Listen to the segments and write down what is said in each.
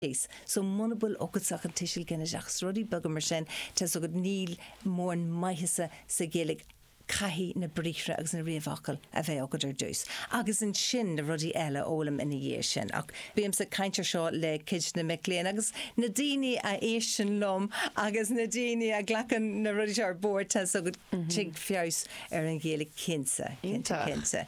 case. So muna bhfuil agatsa ach an tuiseal ginideach 's rudaí beaga mar sin, tá's agat níl mórán maitheasa sa Ghaeilge caithfidh na briathra agus na réamhfhocail a bheith agat ar dtús agus ansin na rudaí eile a fhoghlaim ina dhiaidh sin ach bímse ag caint ar seo le cuid de na mic léinn agus na daoine a éisteann liom agus na daoine a ghlacann na rudaí seo ar bord tá's agat tig feabhas ar an Ghaeilge cinnte, cinnte, cinnte.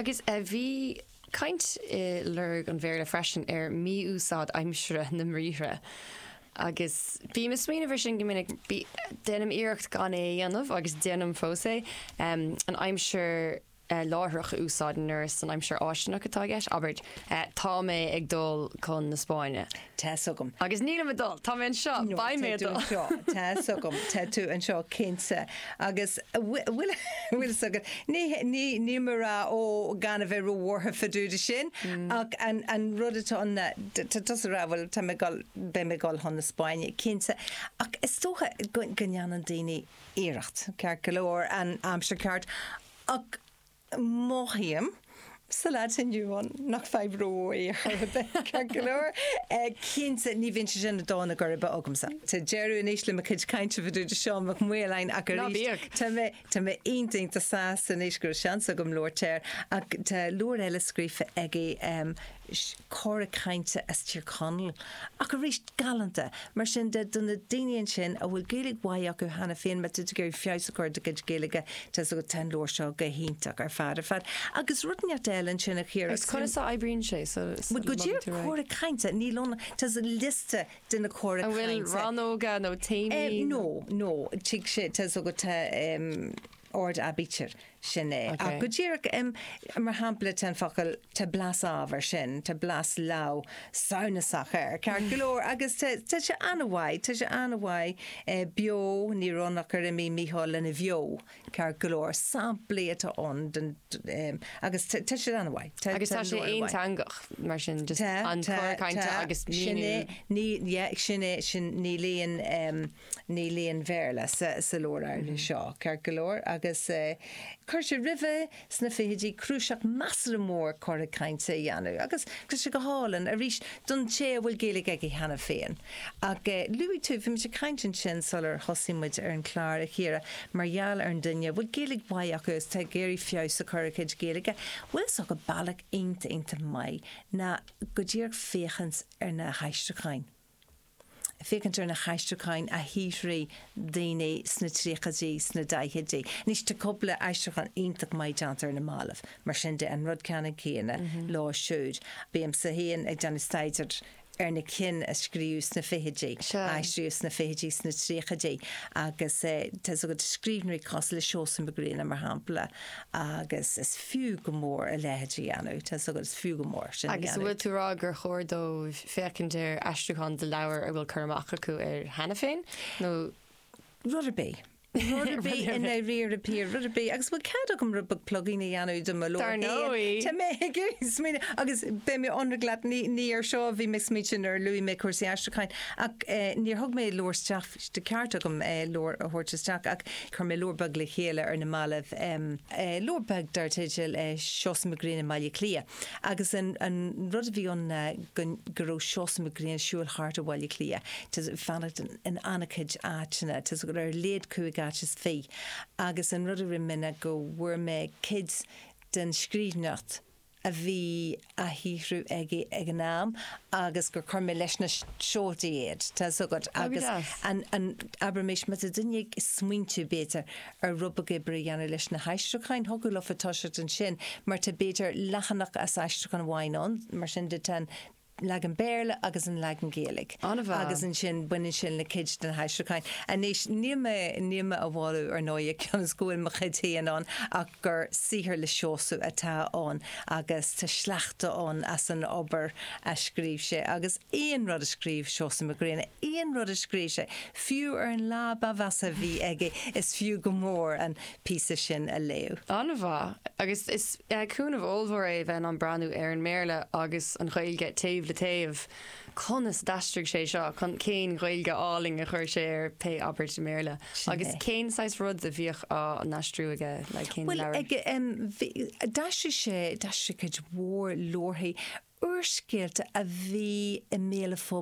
Agus a bhí caint i lorg an Bhéarla freisin ar mí-úsáid aimsire na mbriathra agus bím ag smaoineamh air sin go minic. Déanaim iarracht gan é a dhéanamh agus déanaim fós é. An aimsir láithreach a úsáid nuair is an aimsir fháistineach atá i gceist, abair, Tá mé ag dul chun na Spáinne. Tá's agam. Agus nílim ag dul. Tá mé anseo. No, Beidh mé ag dul. Tá's agam. Tá's agam. Tá tú anseo cinnte. Agus bhfuil fhios agat? Ní ní níl mé ag rá ó gan a bheith róbhuartha fá dtaobh de sin ach an an rud atá ann tá tusa ag rá bhuel tá mé ag dul beidh mé ag dul chun na Spáinne cinnte ach is dócha go go ndéanann daoine iarracht ceart go leor an aimsir ceart ach Mothaím sa lá atá inniu ann nach fadhb rómhór ar chor ar bith ceart go leor. Cinnte, ní bhíonn sé sin ag dó na geirbe agamsa. Tá deireadh anois le mo chuid cainte fá dtaobh de Sheán Mac Maoláin ach arís tá mé iontach go deo sásta anois go raibh seans agam labhairt air ach tá leabhar eile scríofa aige, Cora cainte as Tír Chonaill, ach arís galánta. Mar sin de, do na daoine ansin a bhfuil Gaeilge mhaith acu cheana féin, má tá tú ag iarraidh feabhas a chur ar do chuid Gaeilge, tá's agat, tá an leabhar seo go hiontach ar fad ar fad. Agus rud inteacht eile ansin a Chiara. Agus conas a oibríonn sé sula mbeidh tú réidh? Go díreach, Cora Cainte, níl ann, tá liosta de na cora cainte. An bhfuil rannóga nó téamaí? No, no, tig sé, tá's agat. ord aibítir. Sin é. Ach go díreach, mar shampla, tá an focal, tá blas amh ar sin, tá blas leamh samhnasach air, ceart go leor, agus tá sé an-mhaith, tá sé an-mhaith beo, ní raibh ann ach gur imigh Micheál lena bheo, ceart go leor, samplaí atá ann den, agus tá sé an-mhaith. Agus tá sé aonteangach, mar sin, just an cor cainte agus míniú. Sin é, ní, yeah, sin é, sin, níl aon, Níl aon Bhéarla sa leabhar áirithe seo, ceart go leor, agus chuir sé roimhe sna fichidí cnuasach measartha mór cortha cainte a dhéanamh, agus tá sé go hálainn, arís, don té a bhfuil Gaeilge aige cheana féin. Ach luaigh tú, bhí muid ag caint ansin sular thosaigh muid ar an chlár, a Chiara, mar gheall ar an duine a bhfuil Gaeilge mhaith acu agus atá ag iarraidh feabhas a chur ar a chuid Gaeilge. Bhuel, tá's agat bealach iontach, iontach maith ná go díreach féachaint ar na haistriúcháin. féachaint ar na haistriúcháin a shaothraigh daoine sna tríochaidí, sna daichidí. Anois tá cúpla aistriúchán iontach maith déanta ar na mallaibh, mar sin de, an rud ceanann céanna leo siúd. Bímse féin ag déanamh staidear ar na cinn a scríobhadh sna fichidí, a aistríodh sna fichidí, sna tríochaidí, agus tá 's agat, scríbhneoirí cosúil le Seosamh Mac Grianna, mar shampla, Agus is fiú go mór a leithéid a dhéanamh, tá 's agat, is fiú go mór sin a dhéanamh. Agus an bhfuil tú a rá gur chóir dóibh féachaint ar aistriúcháin de leabhar a bhfuil cur amach acu air cheana féin, nó.? Rud ar bith. Rud ar bith i ndáiríre, Pierre, rud ar bith. Agus bhfuil cead agam rud beag plugála a dhéanamh de mo leabhar. Dar ndóigh. Tá mé ag smaoineamh, agus beidh mé ionraic leat, ní ar seo a bhí mé ag smaoineamh nuair a luaigh mé cúrsaí aistriúcháin, ach níor thug mé leabhar isteach Ba cheart agam leabhar a thabhairt isteach ach chuir mé leabhar beag le chéile ar na mallaibh, leabhar beag dar teideal Seosamh Mac Grianna i mBaile Cliath agus an rud a bhí ann ná go raibh Seosamh Mac Grianna ag siúl thart i mBaile Cliath ag fanacht in an-chuid áiteanna, ar a laghad cúig áit is fiche, agus an rud a rinne mé ná go bhfuair mé cuid den scríbhneoireacht. a bhí á shaothrú aige ag an am agus gur chuir mé leis na seoltaí iad, tá 's agat, agus an, abraimis, má tá duine ag smaointiú, b'fhéidir, ar rud beag oibre a dhéanamh leis na haistriúcháin, thiocfadh leofa toiseacht ansin mar tá, b'fhéidir, leathanach as aistriúchán amháin ann, mar sin de tá an, leagan Béarla agus an leagan Gaeilge. An-mhaith. Agus ansin baineann sin le cuid de na haistriúcháin. Anois níl mé, níl mé á mholadh ar ndóigh cionn is go bhfuil mo chuid féin ann ach gur saothar le Seosamh atá ann agus tá sleachta ann as an obair a scríobh sé agus aon rud a scríobh Seosamh Mac Grianna, aon rud a scríobh sé, fiú ar an lá ba mheasa a bhí aige, is fiú go mór an. píosa sin a léamh. An-mhaith, agus is cúnamh ollmhór é bheith in ann breathnú ar an mBéarla agus an Ghaeilge taobh le taobh. Conas a d'aistrigh sé seo? Cén Ghaeilge álainn a chuir sé ar pé abairt i mBéarla? Agus cén saghas rud a bhíodh á n-aistriú aige? Bhuel, d'aistrigh sé, d'aistrigh cuid mhór leabharthaí, úrscéalta a bhí i mbéal an phobail.